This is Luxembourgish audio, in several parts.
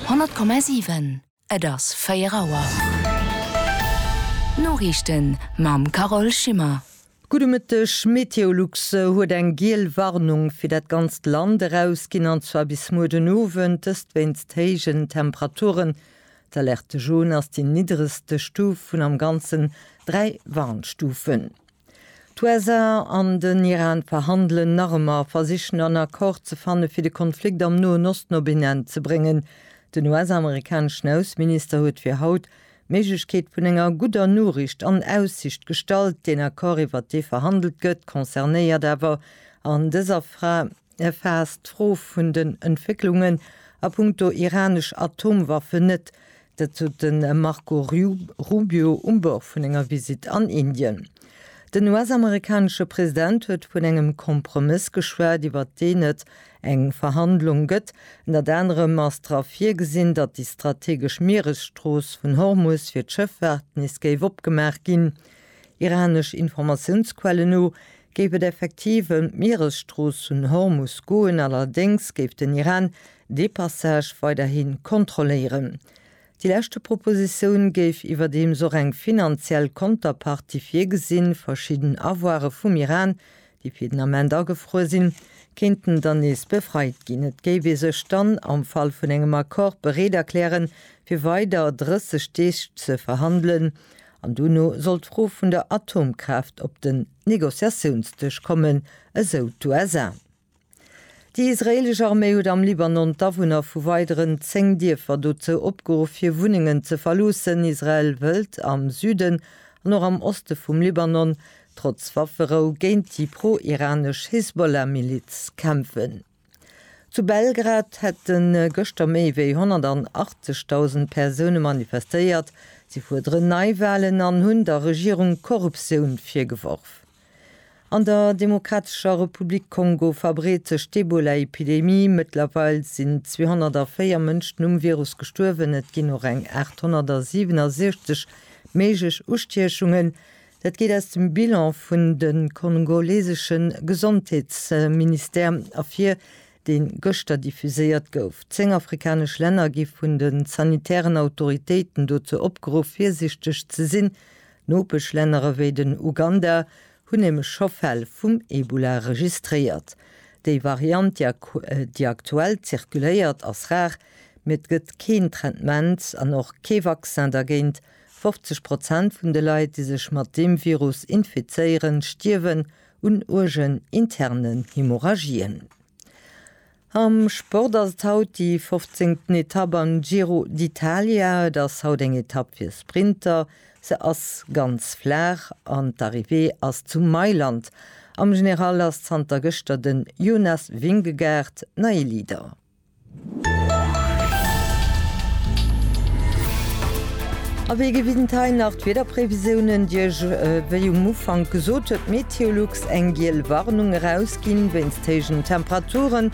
100,7 Et ass 4 Auer. D'Noriichten mam Carole Schimmer. Gudde Mëtteg, Meteolux huet eng giel Warnung fir dat ganzt Land erausginn, an zwar bis muer den Owend, dëst wéinst héijen Temperaturen. D'Alerte Jaune ass déi niddregste Stuf vun am Ganzen dräi Warnstufen. D'USA an den Iran verhandelen nach ëmmer, versichen en Accord ze fanne fir de Konflikt am Noen Osten op een Enn ze bréngen. Den US-amerikaneschen Ausseminister huet fir haut d'Méiglechkeet vun enger gudder Noriicht an Aussicht gestallt. Deen Accord iwwert dee verhandelt gëtt concernéiert awer an dëser Fra. erfaasst d'Fro vun den Entwécklungen a punkto iranesch Atomwaffen net. Dat sot de Marco Rubio um Bord vun enger Visitt an Indien. Den US-amerikanesche President huet vun engem Kompromëss geschwat, iwwert deen et eng Verhandlung gëtt. Ënnert anerem ass dra virgesinn, datt déi strategesch Mieresstrooss vun Hormus fir d'Schëffaart nees géif opgemaach ginn. Iranesch Informatiounsquellen no Géif et effektiv ëm d'Mieresstrooss vun Hormus goen, allerdéngs géif den Iran dee Passage weiderhi kontrolléieren. Déi leschte Propositioun géif iwwerdeems och eng finanziell Konterpartie virgesinn, verschidden Avoire vum Iran, déi fir den Ament agefruer sinn, kéinten dann nees befreit ginn. Et géif ee sech dann am Fall vun engem Accord bereet erklären, fir weider 30 Deeg ze verhandelen, An dono soll d'Fro vun der Atomkraaft op den Negociatiounsdësch kommen, esou d'USA. Déi israeelesch Arméi huet am Libanon d'Awunner vu weideren 10 Dierfer dozou opgeruff, hir Wunnengen ze verloossen. Israel wëllt am Süden an och am Oste vum Libanon, trotz Wafferou, géint déi pro-iranesch Hisbollah-Miliz kämpfen. Zu Belgrad hätte gëschter méi wéi 180.000 Persoune manifestéiert. Si fuerderen Neiwalen an hunn der Regierung Korruptioun virgeworf. An der Demokratescher Republik Kongo verbreet sech d'Ebola-Epidemie. Mëttlerweil sinn 204 Mënschen um Virus gestuerwen, et ginn och eng 867 méiglech Ustiechungen. Dat geet aus dem Bilan vun de kongolesesche Gesondheetsministère ervir, dee gëschter diffuséiert gouf. Zéng afrikanesch Länner gi vun de sanitären Autoritéiten dozou opgeruff, virsichteg ze sinn. Nopeschlänner ewéi den Uganda hunn nämlech scho Fäll vum Ebola registréiert. Déi Variant, déi aktuell zirkuléiert, ass rar, mee et gëtt keen Traitement an och kee Vaccin dergéint, 50 Prozent vun de Leit, déi sech mat deem Virus infizéieren, stierwen un uergen internen Hemorrhagien. Am Sport ass et haut déi fofzéngten Etapp am Giro d'Italia. Et ass haut eng Etapp fir Sprinter. Se ass ganz flaach an d'Arrivée ass zu Mailand. Am General ass zanter gëschter den Jonas Vingegaard neie Leader. A wéi gewinnt hei nach d'Wiederprevisiounen, déi ech wéi um Ufank gesot huet, d'Meteolux eng giel Warnung erausginn wéinst héijen Temperaturen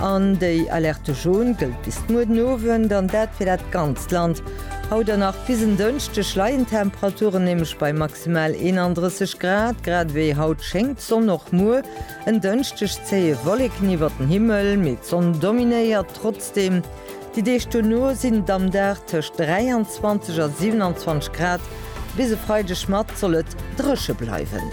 an déi Alerte jaune gëllt bis muer den Owend an dat fir dat ganzt Land. Haut an nach bis en Dënschdeg leien d'Temperaturen nämlech bei maximal 31 Grad, grad ewéi haut schéngt d'Sonn och muer. En Dënschdeg zéie Wolleken iwwert den Himmel, mee d'Sonn dominéiert trotzdeem. Déi Deeg duerno sinn et am Dag tëscht 23 a 27 Grad. Bis e Freideg mat soll et dréche bleiwen.